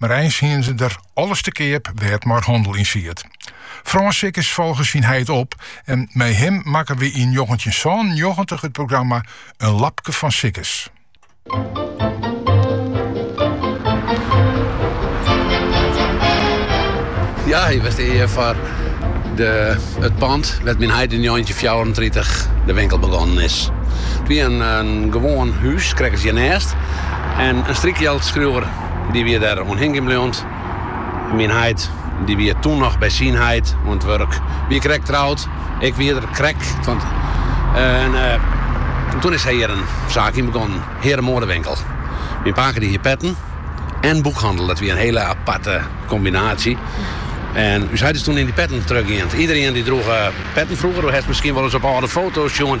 Mar eins hiene se der alles te keap dêr't mar hannel yn siet. Frânz Sikkes folge syn heit op en mei him makke we yn njoggentjinhûndertsânennjoggentich it programma In lapke fan Sikkes. Ja, wy binne hjir foar it pand wêr't myn heit yn njoggentjinhûndertfjouwerentritich de winkel begonnen is. It wie in gewoan hûs, krekt as hjirnêst, en in strykjildskriuwer Dy wie dêr oan hingjen bleaun. Myn heit dy wie toen noch by syn heit oan it wurk. Wie krekt troud. Ik wie der krekt. En toen is hy hjir in saak yn begonnen. Hearemoadewinkel. Myn pake dy hie petten en boekhannel. Dat wie in hiele aparte kombinaasje. En ús heit is toen yn dy petten trochgien. Iedereen dy droech petten frûger. Do hast miskien wol ris op âlde foto's sjoen.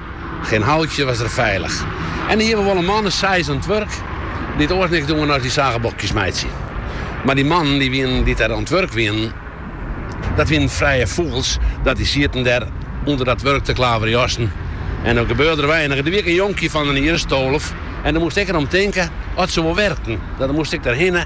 Gjin houtje was der feilich. En dêr hie we wol in man as seis oan it wurk, dy't oars niks diene as dy sagebokjes meitsje. Mar dy mannen dy't wienen, dy't der oan it wurk wienen, dat wienen frije fûgels, dat dy sieten der ûnder dat wurk te klaverjassen en der gebeurde der weinich. Der wie ek in jonkje fan in jier as tolf en dêr moast ik der om tinke oft se wol werkten. Dan moast ik der hinne.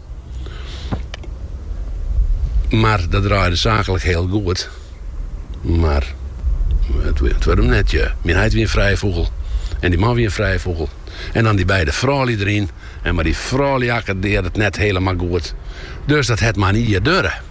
Mar dat draaide saaklik hiel goed. Mar it waard him net. Myn heit wie in frije fûgel. En dy man wie in frije fûgel. En dan dy beide froulju deryn. En mar dy froulju akkordearren net hielemaal goed. Dus dat hat mar ien jier duorre.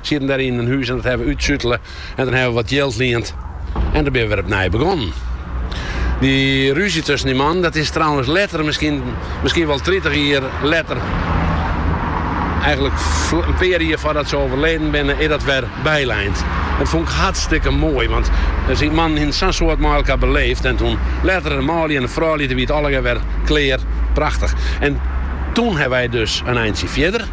Sieten dêr yn in hûs en dat hawwe we útsutele. En dan ha we wat jild liend en dan binne we wer op nij begonnen. Dy rúzje tusken dy mannen, dat is trouwens letter, miskien wol tritich jier letter, eigentlik in pear jier foardat se owerleden binne, is dat wer bylein. Dat fûn ik hartstikke moai, want dy mannen hiene sa'n soad mei elkoar beleefd. En toen letter de manlju en de froulju, dat wie it allegear wer klear, prachtich. En toen ha wy dus in eintsje fierder,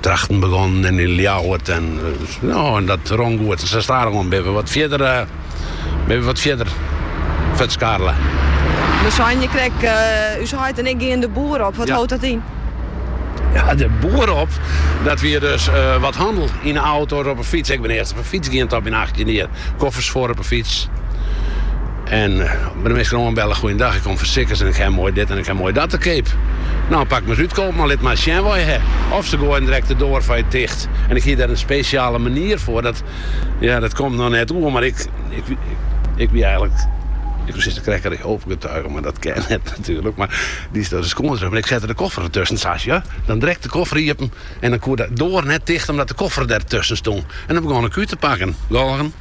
Drachten begonnen en yn Ljouwert en no en dat rûn goed. En sa stadichoan binne we wat fierder binne we wat fierder futskarrele. Do seist krekt ús heit en ik gean de boer op. Wat hâldt dat yn? Ja, de boer op, dat wie dus wat hannel yn 'e auto of op 'e fyts. Ik bin earst op 'e fyts gien, oan myn achttjinde jier. Koffers foar op 'e fyts. En by de minsken oanbelle, goeiendag, ik kom fan Sikkes en ik ha moai dit en ik ha moai dat te keap. No, pak mar ris út, koopman, lit mar sjen wat je ha. Of se goaiden direkt de doar foar je ticht. En ik hie der in spesjale manier foar, dat, ja, dat komt no net oer, mar ik, ik, ik wie eigenlik, ik wou sizze krekt Jehova getugen, mar dat kin net natuerlik, mar dy set dêr de skuon tusken, mar ik sette de koffer der tusken, sa sjo, dan direkt de koffer iepen en dan koe de doar net ticht omdat de koffer der tusken stong en dan begon ik út te pakken, hè.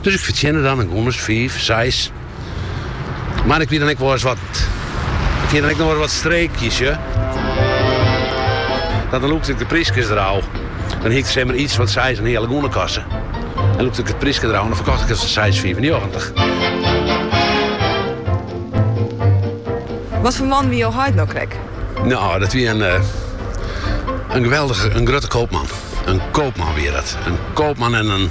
Dus ik fertsjinne dan in gûnens fiif, seis. Mar ik wie dan ek wol ris wat. Ik hie dan ek noch ris wat streekjes, sjoch. Dat dan lûkte ik de pryskes der ôf. Dan hie ik sa'n, samar iets wat seis in heale gûne kost en dan lûkte ik it pryske der ôf en dan ferkocht ik it foar seis fiifennjoggentich. Wat foar man wie jo heit no krekt? Nou, dat wie in, eh, in geweldige, in grutte koopman. In koopman wie dat. In koopman en in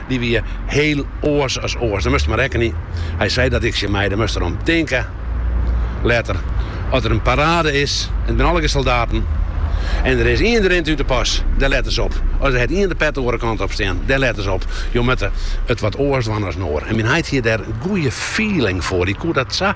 Dy wie hiel oars as oars. Dêr moatst mar rekkenje. Hy sei dat ek, tsjin my, do moatst derom tinke. Letter, as der in parade is en der binne allegear soldaten en der is ien dy rint út de pas, dêr lette se op. As der, hat ien de pet de oare kant op stean, dêr lette se op. Jo moatte it wat oars dwaan as in oar. En myn heit hie dêr in goeie feeling foar. Dy koe dat sa.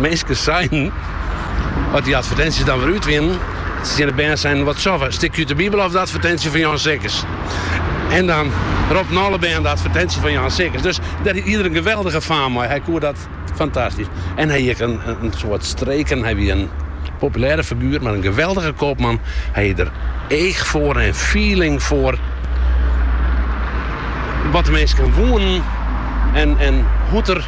Minsken seinen, as dy advertinsjes dan wer út wienen, tsjin de bern seinen, Wat sil 'k, in stikje út de Bibel of de advertinsje fan Jan Sikkes? En dan roppen alle bern de advertinsje fan Jan Sikkes. Dus dêr hie er in geweldige faam mei. Hy koe dat fantastysk. En hy hie ek in, in soad streken. Hy wie in populêre figuer, mar in geweldige koopman. Hy hie der each foar en feeling foar wat de minsken woenen en, en hoe't er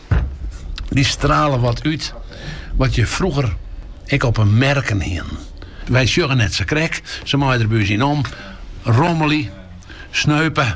Dy strale wat út wat je froeger ek op 'e merken hienen. Wy sjogge net sa krek, se meie der by ús yn omrommelje, sneupe.